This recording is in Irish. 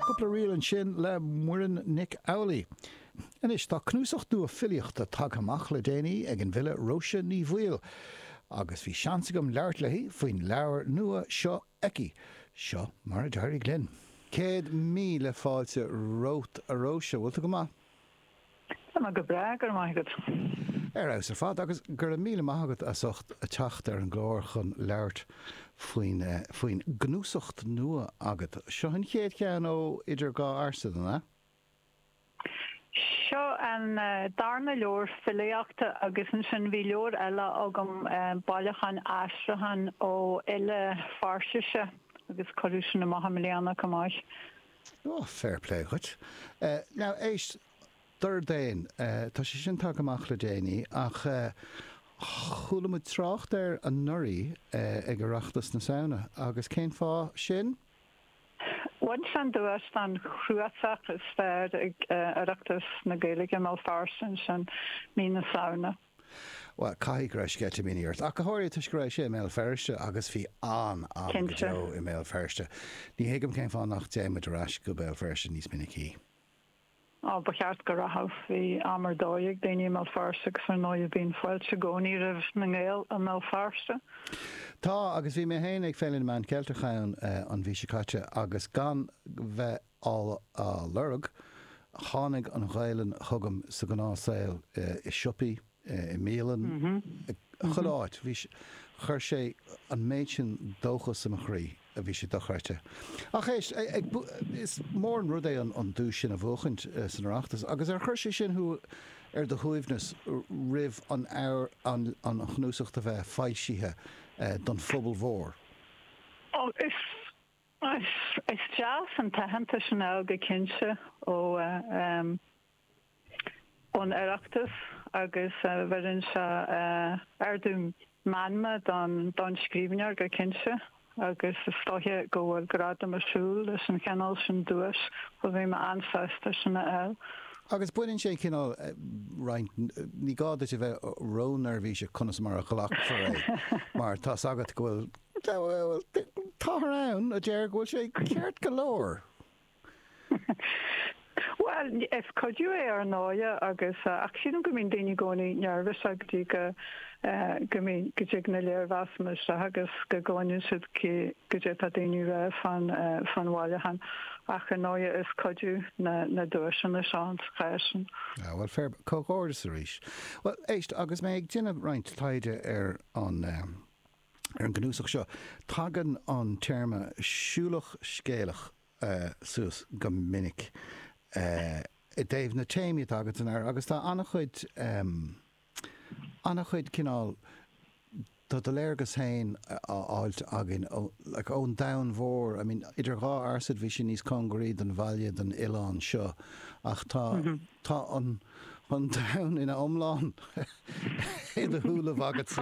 Cúpla ríl ansin le Muireann Nic Amhlaoibh. Anois, tá cnuasacht nua filíochta tagtha amach le déanaí ag an bhfile Róise Ní Bhaoill, agus bhí seans agam labhairt léi faoin leabhar nua seo aici. Seo mar a d'éirigh linn. Céad míle fáilte romhat, a Róise. Bhfuil tú go maith? Tá mé go breá, go raibh maith agat. Ar fheabhas ar fad agus go raibh míle maith agat as ucht teacht ar an gclár chun labhairt faoin faoin gcnuasacht nua agat. Seo an chéad cheann ó Idir Dhá Ursain, an ea? Seo an darna leabhar filíochta agus ansin bhí leabhar eile agam, Bailiúchán Aistriúcháin ó fhile Pheirsise agus cuireadh sin amach i mbliana, chomh maith. Ó, fair play dhuit. Now, éist, Dordéan, tá sé sin tagtha amach le déanaí ach chuala muid trácht air anuraidh ag Oireachtas na Samhna agus cén fáth sin? Bhain sé an duais don chnuasach is fearr ag Oireachtas na Gaeilge, i mBéal Feirste ansin mí na Samhna. Bhuel, caithfidh go raibh sceitimíní ort, ach go háirithe toisc go raibh sé i mBéal Feirste agus bhí an-am go deo i mBéal Feirste. Ní thuigim cén fáth nach dtéann muid ar ais go Béal Feirste níos minicí. Á, ba cheart go rachadh. Bhí am ar dóigh ag daoine i mBéal Feirste agus ar ndóigh bíonn fáilte i gcónaí roimh na nGael i mBéal Feirste. Tá, agus bhí mé féin ag Féile na Meán Ceilteach ann an mhí seo caite agus gan bheith á lorg. Tháinig an Ghaelainn chugam sa ghnáthsaol, i siopaí, i mbialann, chuile áit. Bhí, chuir sé an méid sin dóchas i mo chroí, bhí sé dochreidte. Ach éist, is mór an rud é an duais sin a bhuachaint san Oireachtas, agus ar chuir sé sin thú ar do shuaimhneas roimh an chnuasacht a bheith foilsithe don phobal mhór? Is deas an t-aitheantas a fháil go cinnte ón Oireachtas agus bheireann sé ardú meanma don scríbhneoir go cinnte agus is dóiche go bhfuil gradam ag siúl leis an chineál sin duais so bhí mé an-sásta sin a fháil. Agus baineann sé an cineál roinnt, ní gá duit a bheith ró-neirbhíseach conas mar a ghlacfar é mar tá's agat go bhfuil Táthar ann a deir go bhfuil sé ceart go leor. Bhuel, is cuidiú é ar ndóighe agus, ach sílim go mbíonn daoine i gcónaí neirbhíseach go dtí go, go mbíonn, go dtig na léirmheasanna isteach agus go gcluineann siad goidé atá daoine rá fán, fán bhailiúchán. Ach ar ndóighe is cuidiú na, na duaiseanna seo sa chás sin. Ah, bhuel, fair, comhghairdeas arís. Bhuel, éist, agus mé ag déanamh roinnt taighde ar an, ar an gcnuasach seo, tagann an téarma 'siúlach scéalach' suas go minic i dtaobh na téamaí atá agatsa air agus tá an-chuid, an-chuid cineál, tá do léargas féin á fháilt againn ón domhan mhór, I mean, Idir Dhá Fhearsaid bhí sí níos cóngaraí don bhaile, don oileán seo ach tá, tá an domhan ina iomlán siúlta agatsa.